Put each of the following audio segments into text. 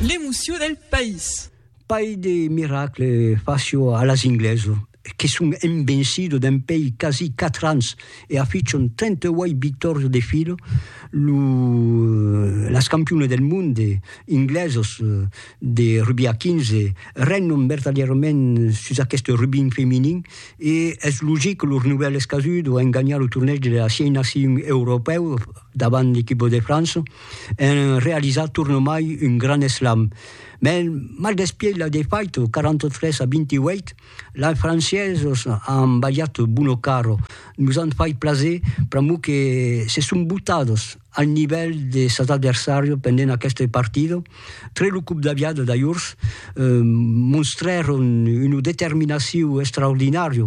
L'emocion del país. Pair de miracle facio a las inglesos que son envencidos dempèi quasi 4 ans e afichon 38 victòrias de filo lo las campionas del monde inglesos de rugbi a 15 regnon vertadièrament sus aqueste rugbi femenin e es logic que lors novèls casudon an ganhat lo tornèg de las 6 nacions europèus davant l'equipa de França. en realizar tornomai un grand eslam. Mès mal despièch la defaita 43 a 28, lai franciesos an balhat buono caro, nos an fait plaser pr'amor que se son botados al nivèl de sas adversàrios pendent aqueste partida. Tre lo còp d'aviada d'ajorns, monstrèron una determinacion extraordinària,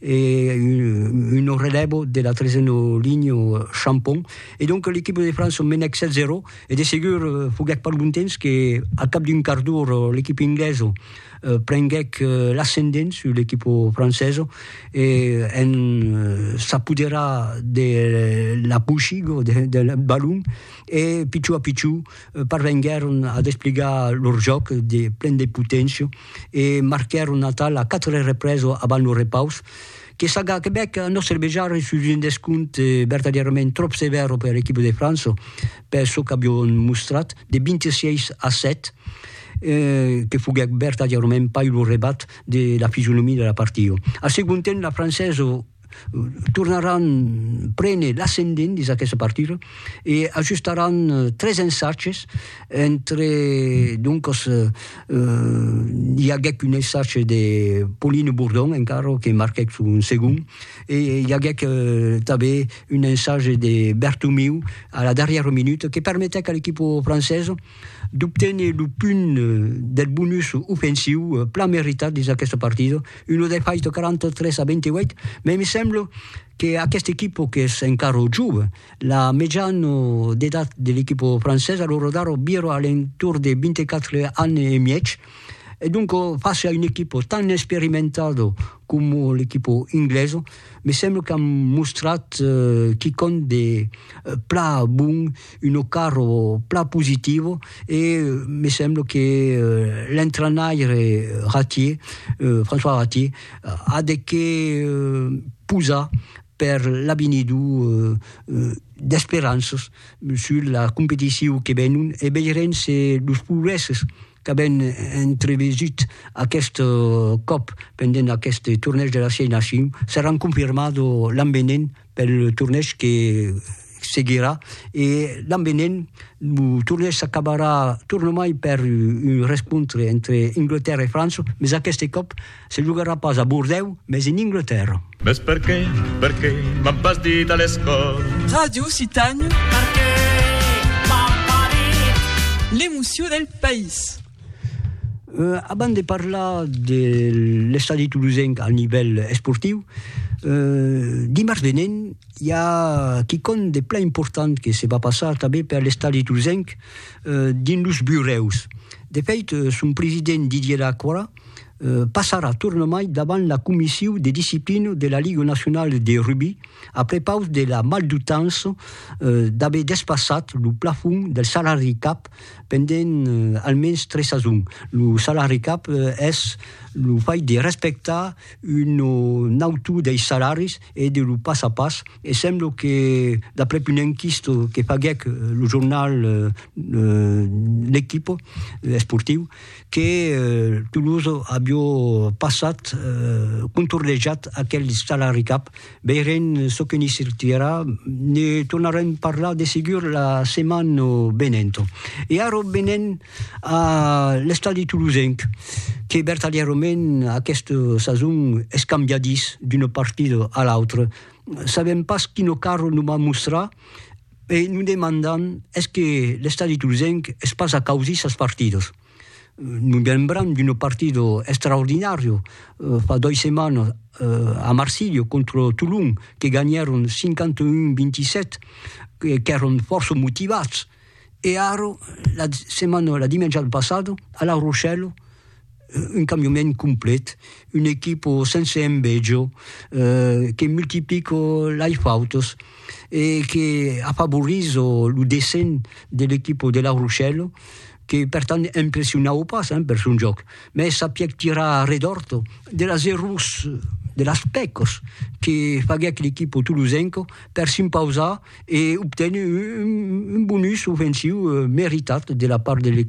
e un nò relèvo de la tresena linha Champon e donc l'equipa de França menèc 7 a 0 e de segur foguèt pas lontens que al cap d'un quart d'ora l'equipa inglesa prenguèc l'ascendent sus l'equipa francesa e en s'apoderar de la poushiga del balon e pichó a pichó parvenguèron a despligar lor jòc de plen de poténcia e marquèron Natal a 4 reprèses avant lo repaus, que Saga Quebec, a nòstre vejar, sus un descompte vertadièrament tròp sevèr per l'equipa de França, per çò qu'avion mostrat, de 26 a 7, que foguèt vertadièrament pas lo rebat de la fisionomia de la partida. Al segond temps, la Francesa, tornaràn prene l'ascendent dins aquesta partida e ajustaràn tres ensatges entre doncas i aguèc un ensatge de Pauline Bourdon encara que marquèc son segond e i aguèc tanben un ensatge de Bertomeu a la darrièra minuta que permetèc a l'equipa francesa d'obténer lo punt del bonus ofensiu plan meritat dins aquesta partida, una defaita 43 a 28, mai me sembla que aquesta equipa qu'es encara jove, la mejana d'edat de l'equipa francesa, lo radar vira a l'entorn de 24 ans e mièg, e donc fàcia una equipa tan experimentada coma l'equipa inglesa, me sembla qu'an mostrat quicòm de plan bon, Uno carro plan positivo e me semblo que l'entrainaire Ratier, François Ratier, a de qué posar per l'avenido d'esperanças sus la competicion que venon e veirem se los progrèsses qu'avèn entrevesut aqueth còp pendent aqueste tornèish de la Sièis Nacion, seràn confirmats o l'an venent pel tornèish que seguirà e l'an venent lo tornèish s'acabarà tornomai per un rescontre entre Anglatèrra e França, mès aqueste còp Se jogarà pas a Bordèu, mes en Inglatèrra. Mes perqué, perqué m'an pas dit a l'escòla. Ràdio Citània. Perqué m'an pas dit. L'emocion del país. Abans de parlar de l'estadi tolosenc al nivèl esportiu, dimars venent i a quicòm de plan important que se va passar tanben per l'estadi tolosenc dins los burèus. De fèit, son president Didier Lacroix passarà tornamai davant la comissiu de disciplina de la Liga Nacionala de Rugbi a prepaus de la maldutança d'aver despassat lo plafon del salari cap pendent almens tres sasons. Lo salari cap es lo fai de respectar un o nautu dei salaris e de lo pas a pas e sembla que, d'aprèp una enquista que faguèc lo jornal L'Equipe esportiu, que Toulouse avió passat contorlejat aquel stalaricap, veirem çò que n'i sortirà, ne tornarem parlar de segur la setmana venenta. E ara venem a l'estadi toulousenc, que vertadièrament aquesta sason es cambiadís d'una partida a l'autra, sabèm pas quina cara nos va mostrar, E nos demandan, es que l'estadi tolzenc es pas a causir sas partidas? Nos lembram d'un partido extraordinario fa dois setmanas a Marsilha contra Tolon que ganhèron 51-27, qu'èron fòrça motivats, e ara la setmana, la dimènja passada a La Rochelle, un cambiament complet, un equipo sense envejo, que multiplico lei fautos e que afavoriso lo dessenh de l'equipo de La Rochelle que per tant impressionau pas per son jòc, mès sapiec tirar a redòrt de las errors, de las pècas que faguec l'equipo tolosenca per s'impausar e obténer un bonus ofensiu meritat de la part de l'equipo de La Rochelle.